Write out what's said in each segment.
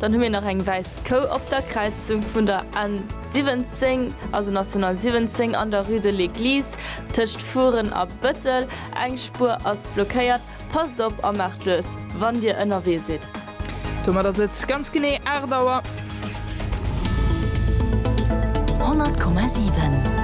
Dann hu mir nach eng wäiss Kou op der Kräizung vun der N 17, also National 17, an der Rue de l'Eglise tëscht Furen a Bëttel. Eng Spuer ass blockéiert. Passt op a maacht lues, wann Dir ënnerwee sidd. Domat ass et ganz genee 8 Auer. 100,7.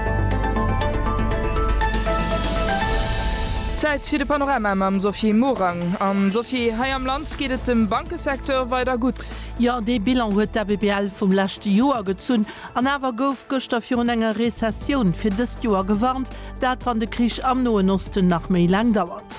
Zäit fir de Panorama mam Sophie Morang. An Sophie, hei am Land. Geet et dem Bankesecteur weider gutt? Jo, dee Bilan huet d'ABBL vum leschte Joer gezunn. An awer gouf gëschter virun enger Rezessioun fir dëst Joer gewarnt, dat wann de Krich am Noen Osten nach méi laang dauert.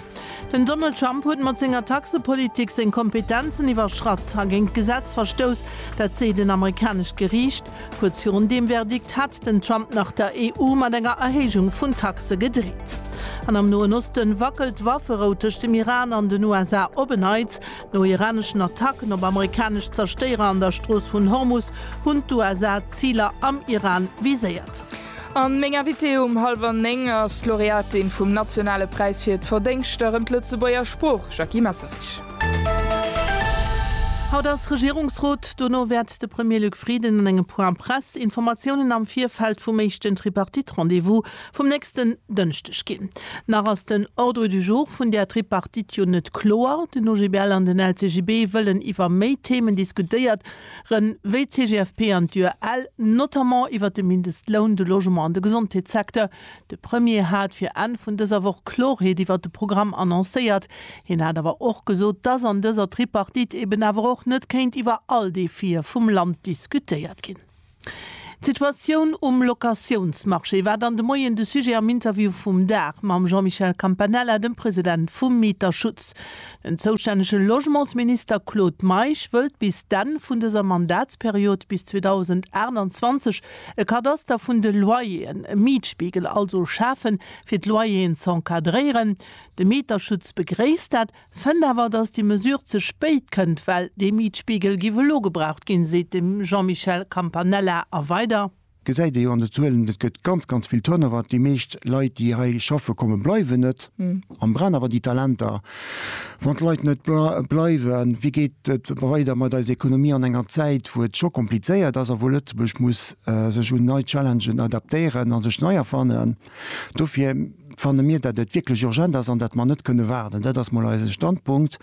Den Donald Trump huet mat senger Taxepolitik seng Kompetenzen iwwerschratt a géint d'Gesetz verstouss, dat seet en amerikanescht Geriicht. Kuerz virun deem Verdikt hat. Den Trump nach der EU mat enger Erhéijung vun Taxe gedreet. An am Noen Osten wackelt d'Wafferout tëscht dem Iran an den USA op en Neits. No iraneschen Attacken op amerikanesch Zerstéierer an der Strooss vun Hormus hunn d'USA Ziler am Iran viséiert. An meng Invitée um hallwer 9 ass d'Laureatin vum nationale Präis fir d'Verdéngschter ëm d'Lëtzebuerger Sprooch, Jackie Messerich. Haut ass Regierungsrot, dono wäert de Premier Luc Frieden an engem Point Presse Informatiounen am Virfeld vum éischten Tripartite-Rendez-vous vum nächsten Dënschdeg ginn. Nach ass den Ordre du jour vun där Tripartite jo net kloer. Den OGBL an den LCGB wëllen iwwer méi Themen diskutéiert ren, wéi d'CGFP an d'UEL, notamment iwwer de Mindestloun, de Logement an de Gesondheetssecteur. De Premier hat fir Enn vun dëser Woch Kloreet iwwert de Programm annoncéiert. Hien hat awer och gesot, dass an dëser Tripartite eben awer och net kéint iwwer all Defie vum Land diskutéiert ginn. D'Situatioun um Locatiounsmarché war dann de Moien de Sujet am Interview vum Dag mam Jean-Michel Campanella, dem President vum Mieterschutz. Den zoustännege Logementsminister Claude Meisch wëllt bis d'Enn vun dëser Mandatsperiod, bis 2028, E Kadaster vun de Loyeren, e Mietspiegel also schafen, fir d'Loyeren z'encadréieren. De Mieterschutz begréisst dat, fënnt awer, datt déi Mesure ze spéit kënnt, well dee Mietspiegel géif elo gebraucht ginn, seet de Jean-Michel Campanella. A weider. Gesäit ee jo an de Zuelen, et gëtt ganz, ganz vill Turnover. Déi meescht Leit, déi hei schaffe, komme bleiwen net. An brenn awer déi Talenter, wann d'Leit net bleiwen, wéi geet et weider mat eiser Ekonomie an enger Zäit wou et scho komplizéiert ass a wou Lëtzebuerg muss sech un nei Challengen adaptéieren a sech nei erfannen. Dofir fanne mir dat et wierklech urgent ass an dat mer net kënne waarden. Dat ass mol eise Standpunkt.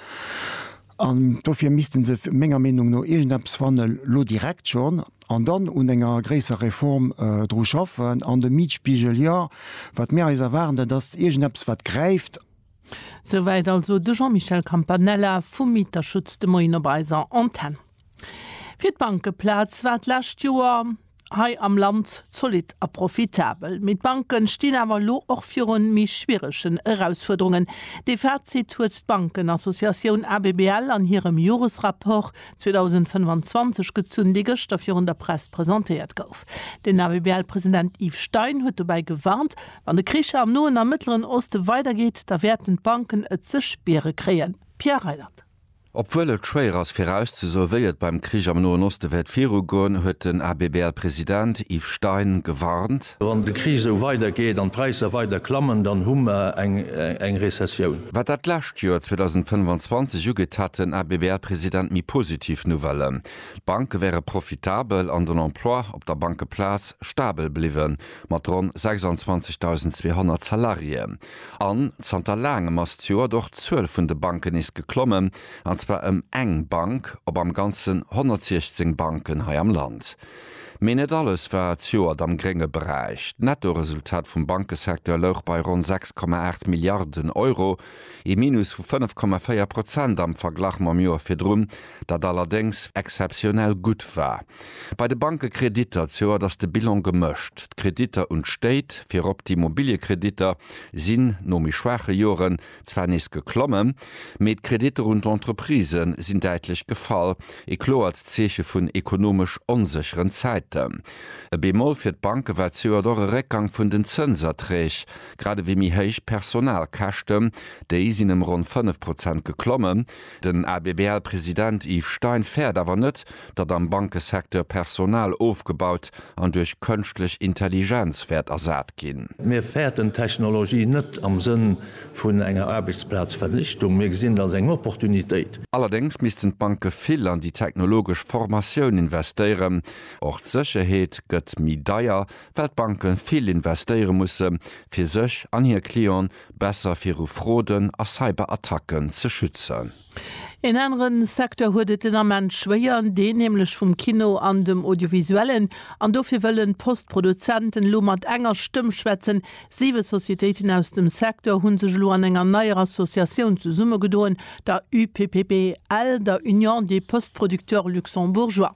An dofir misste se menger Meenung no iergendeppes fannen, elo direkt schonn, an dann un enger gréisserer Reform dru schaffen. An de Mietspiegel, jo, wat mir eis erwaarden, dat ass iergendeppes, wat gräift. Souwäit also de Jean-Michel Campanella vum Mieterschutz de Moien op eiser Antenn. Fir d'Bankeplaz war d'lescht Joer. hei am Land zolidd a profitabel. Mee d'Banke stinn awer elo och viru méi schwieregen Erausfuerderungen. Dee Fazit huet d'Bankenassociatioun ABBL an hirem Joresrapport 2025 gezunn, dee gëschter virun der Press presentéiert gouf. Den ABBL-President Yves Stein huet dobäi gewarnt, Wann de Krich am Noen a Mëttleren Oste weidergeet, da wäerten d'Banken et ze spiere kréien. Pierre Reiland. Obwuel et schwéier ass virauszesoe wéi et beim Krich am Noen Oste wäert virugoen, huet den ABBL-President Yves Stein gewarnt. Wann de Krich esou weider geet an d'Präisser weider klammen, dann hu mer eng Rezessioun. Wat dat lescht Joer 2025 ugeet, hat den ABBL-President méi positiv Nouvellen. D'Banke wäre profitabel an den Emploi op der Bankeplaz stabel bliwwen, mat ronn 26.200 Salariéen. An zanter laangem ass zu Oort och d'Zuel vun de Banken nees geklommen, an zwar ëm eng Bank op am Ganzen 116 Banken hei am Land. Mee net alles war zu Oort am grénge Beräich. D'Nettoresultat vum Bankesecteur louch bei ronn 6,8 Milliarden Euro, ee Minus vu 5,4 Prozent am Verglach mam Joer virdrun. dat allerdéngs exzeptionell gutt war. Bei de Bankekreditter zejoert ass de Bilan gemëscht. D'Kreditter un d'Stéit, virop d'Immobiliekreditter, sinn no méi schwaache Joren zwar nees geklommen, mee d'Kreditter un d'Entreprisë sinn däitlech gefall, e kloert Zeeche vun ekonomesch onsécheren Zäiten. E Bemoll fir d'Banke war zejoert och e Réckgang vun den Zënserträg, grad ewéi méi héich Personalkäschten, déi sinn ëm ronn 5 Prozent geklommen, Den ABBL-President Yves Stein fäert awer net, datt am Bankesecteur Personal ofgebaut an duerch kënschtlech Intelligenz wäert ersat ginn. Mir fäerten d'Technologie net am Sënn vun enger Aarbechtsplazvernichtung, mir gesinn et als eng Opportunitéit. Allerdéngs missten d'Banke vill an déi technologesch Formatioun investéieren. Och d'Sécherheet gëtt méi deier, well d'Banke vill investéiere musse fir sech an hir Clientë besser viru Froden a Cyberattacken ze schützen. Een anere Secteur huet et den Ament schwéier, deen nämlech vum Kino an dem Audiovisuellen. An dofir wëllen d'Post-Produzenten elo mat enger Stëmm schwätzen. Siwe Societéiten aus dem Secteur hu sech elo an enger neier Associatioun zesummegedoen, der UPPBL, der Union des Postproducteurs Luxembourgeois.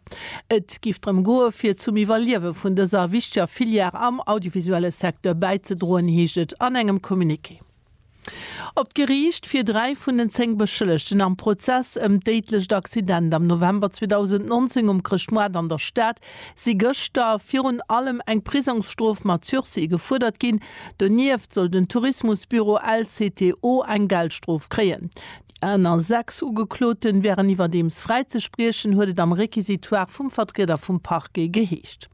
Et géif drëm goe fir zum Iwwerliewe vun dëser wichteger Filière am audiovisuelle Secteur bäizedroen, heescht et an engem Communiqué. Op d'Geriicht fir dräi vun den zéng Beschëllegten am Prozess ëm d'déidlecht Accident am November 2019 um Chrëschtmoart an der Stad si gëschter virun allem eng Prisongsstrof mat Sursis gefuerdert ginn. Donieft soll den Tourismusbüro LCTO eng Geldstrof kréien. Déi aner sechs Ugekloten wären iwwerdeems fräizespriechen, huet et am Requisitoire vum Vertrieder vum Parquet geheescht.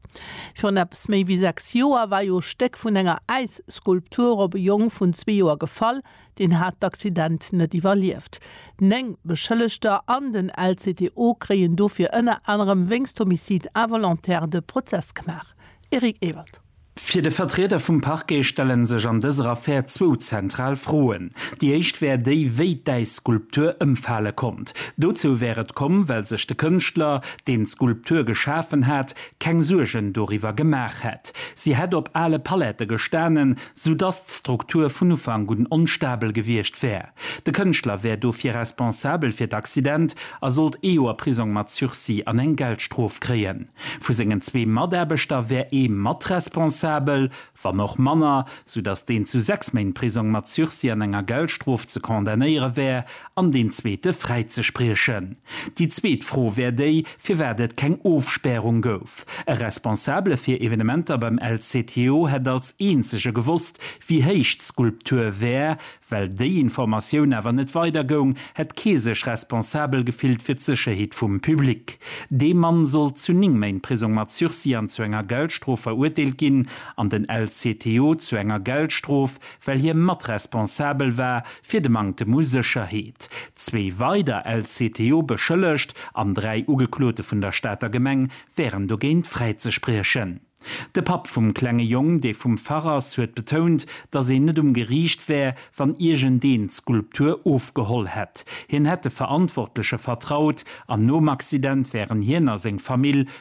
Virun eppes méi wéi sechs Joer war jo Stéck vun enger Äisskulptur op e Jong vun zwee Joer gefall. Deen hat d'Accident net iwwerlieft. Néng Beschëllegter an den LCTO kréien dofir ënner anerem wéinst Homicide involontaire de Prozess gemaach. Eric Ewald. Fir de Vertrieder vum Parquet stelle sech an dëser Affär zwou zentral Froen. Déi éischt wär déi, wéi d'Äisskulptur ëmfale konnt. Dozou wär et komm, well sech de Kënschtler, deen d'Skulptur geschafen hat, keng Suergen doriwwer gemaach hätt. Si hätt op ale Palette gestanen, soudass d'Struktur vun Ufank un onstabel gewiescht wär. De Kënschtler wär dofir responsabel fir d'Accident a sollt ee Joer Prisong mat Sursis an eng Geldstrof kréien. Vu sengen zwee Mataarbechter wär ee matresponsabel, wann och manner, soudass deen zu sechs Méint Prisong mat Sursis an enger Geldstrof ze condamnéiere wär an deen zweete fräizespriechen. Déi zweet Fro wär déi, firwat et keng Ofspärung gouf. E Responsabele fir Evenementer beim LCTO hätt als eenzege gewosst, wéi héich d'Skulptur wär. Well déi Informatioun awer net weider goung, hätt kee sech responsabel gefillt fir d'Sécherheet vum Public. Dee Mann sollt zu 9 Méint Prisong mat Sursis an zu enger Geldstrof verurteelt ginn an den LCTO zu enger Geldstrof well hie matresponsabel war fir de Manktem u Sécherheet. Zwee weider LCTO beschëllegt an dräi Ugeklote vun der Stater Gemeng wären dogéint fräizespriechen. De Papp vum klenge Jong, dee vum Fach ass, huet betount, datt een net um Geriicht wär, wann iergendeen d'Skulptur ofgeholl hätt. Hien hätt de Verantwortleche vertraut an nom Accident wären hien a seng Famill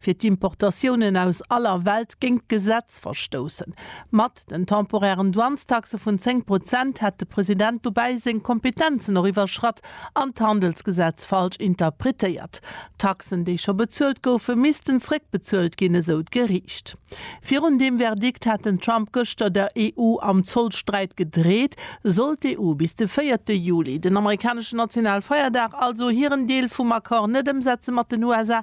fir d'Importatiounen aus aller Welt géint d'Gesetz verstoussen. Mat den temporären Douanestaxe vun 10 Prozent hätt de President dobäi seng Kompetenzen och iwwerschratt an d'Handelsgesetz falsch interpretéiert. Taxen, déi scho bezuelt goufen, missten zréckbezuelt ginn, esou d'Geriicht. Virun deem Verdikt hat den Trump gëschter der EU am Zollsträit gedreet. Sollt d'EU bis de véierte Juli, den amerikaneschen Nationalfeierdag, also hiren Deel vum Accord net ëmsetze mat den USA,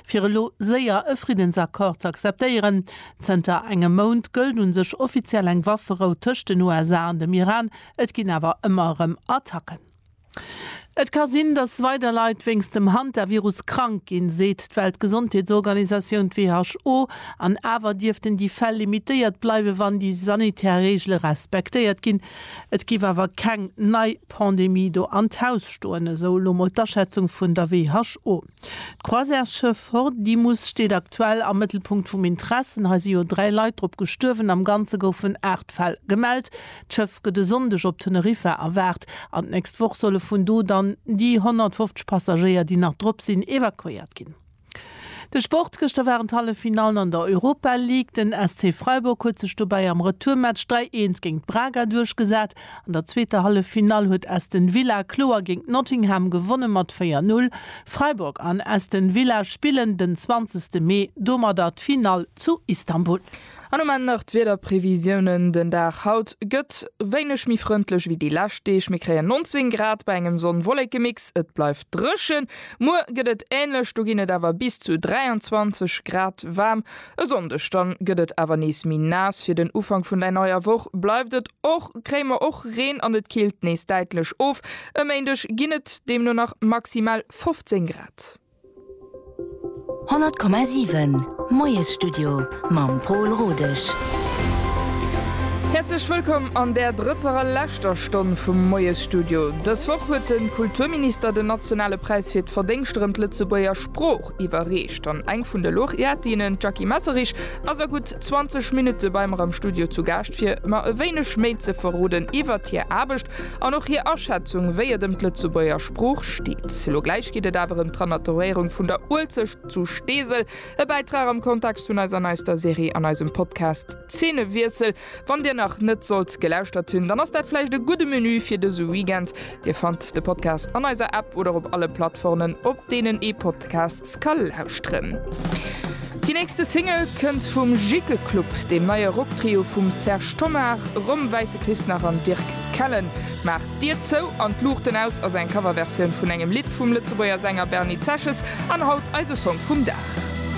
fir elo séier e Friddensaccord z'akzeptéieren. Zënter engem Mount gëllt un sech offiziell eng Wafferou tëscht den USA an dem Iran, et ginn awer ëmmer erëm Attacken. Et ka sinn, datt weider Leit wéinst dem Hantavirus krank ginn, seet d'Weltgesondheetsorganisatioun, d'WHO. An awer dierften déi Fäll limitéiert bleiwen, wann déi sanitär Reegele respektéiert ginn. Et géif awer keng nei Pandemie do an d'Haus stoen, esou elo mol d'Aschätzung vun der WHO. D'Croisièresschëff Hordimus steet aktuell am Mëttelpunkt vum Intressen. Hei si jo dräi Leit drop gestuerwen. Am Ganze goufen aacht Fäll gemellt. D'Schëff gëtt e Sonndeg op Teneriffa erwaart an d'nächst Woch solle vun do dann déi 150 Passagéier, déi nach drop sinn, evakuéiert ginn. De Sport, Gëschter waren d'Halleffinallen an der Europa League. Den SC Freiburg huet sech dobäi am Retourmatch 3, 1 géint Braga duerchgesat. An der zweeter Halleffinall huet Aston Villa kloer géint Nottingham gewonne mat 4, 0. Freiburg an Aston Villa spillen den 20 Mee domadder d'Finall zu Istanbul. An um Enn nach d'Wiederprevisiounen, Den Dag haut gëtt wéineg méi frëndlech ewéi déi lescht Deeg. Mir kréien 19 Grad bei engem Sonn-Wolleke-Mix. Et bleift dréchen. Muer gëtt et änlech, do ginn et awer bis zu 23 Grad waarm. E Sonndeg dann gëtt et awer nees méi naass. Fir den Ufank vun der neier Woch bleift et och, kréie mer och Reen an et killt nees däitlech of. E Méindeg ginn et deemno nach maximal 15 Grad. 100,7 Moiesstudio mam Pol Rodesch. Häerzlech wëllkomm an där drëtter a leschter Stonn vum Moiesstudio. Dës Woch huet de Kulturminister den nationale Präis fir d'Verdéngscht erëm d'Lëtzebuerger Sprooch. Lorch iwwerreecht an eng vun de Laureatinnen, d'Jackie Messerich, ass a gutt 20 Minutte bei mer am Studio zu Gaascht, fir mer e wéineg méi ze verroden iwwert hir Aarbecht an och hir Aschätzung, wéi et ëm d'Lëtzebuerger Sprooch steet. Elo gläich geet et awer ëm d'Renaturéierung vun der Uelzecht zu Steesel, e Bäitrag am Kontext vun eiser neister Serie an eisem Podcast Zeenewiessel. Wann dir nach net sollt gelauschtert hunn, dann ass dat vläicht e gudde Menü fir dëse Weekend. Dir fannt de Podcast an eiser App oder op alle Plattformen, op deenen ee Podcasts ka lauschteren. Déi nächste Single kënnt vum Jikke Club, deem neie Rocktrio vum Serge Tonnar, Rom Wäisse Christnach an Dirk Kellen. Maach d'Dier zou an d'Luuchten aus ass eng Coverversioun vun engem Lidd vum Lëtzebuerger Sänger Bernie Zesches an haut eise Song vum Dag.